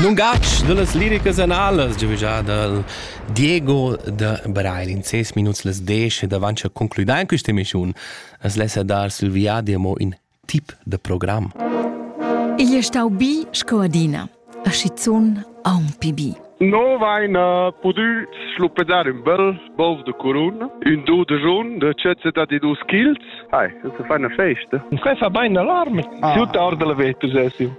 Lungatg dallas liricas analas giavischà dal Diego da Breil in ses minuts las desch ed avant cha concluda in questa emissiun as lessa dar sil viadi amo in tip da program. Igl è stau bi sco adina, a schizun aunc bi. No vaina pudü schluppedar ün bel bov de curun, ün do de jun de cezze da di dus chils. Hai, das ist eine Feste. Quai fa bain alarm. Ah. Tut ard la vetus essim.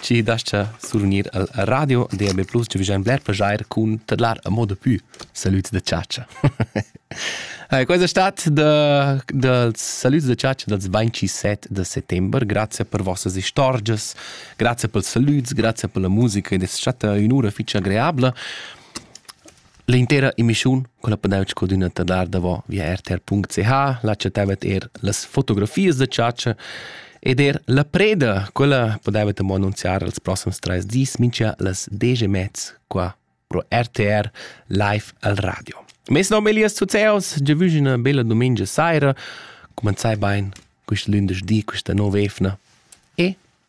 chi dascha survgnir al radio DAB+, chi vajan bler plaschair cun tadlar a moda pü salüds da chatscha. Questa estate da, dals salüds da chatscha dals 27 da settember. Grazie per vossas istorgias, grazie per salüds, grazie per la musica ed es stata ün'ura fich agreabla. L'intera emissiun, quella podev scadüna tadlar davo via rtr.ch, là chattavet er las fotografias da chatscha ed er la preda, quella podevet amo annunziar els prossims trais dis, mincha las desch e mez qua pro RTR live al radio. Mes nom è Elias Zuzeos, già vüg üna bella domenica saira, comenzai bain quist lündeschdi, quista nova evna e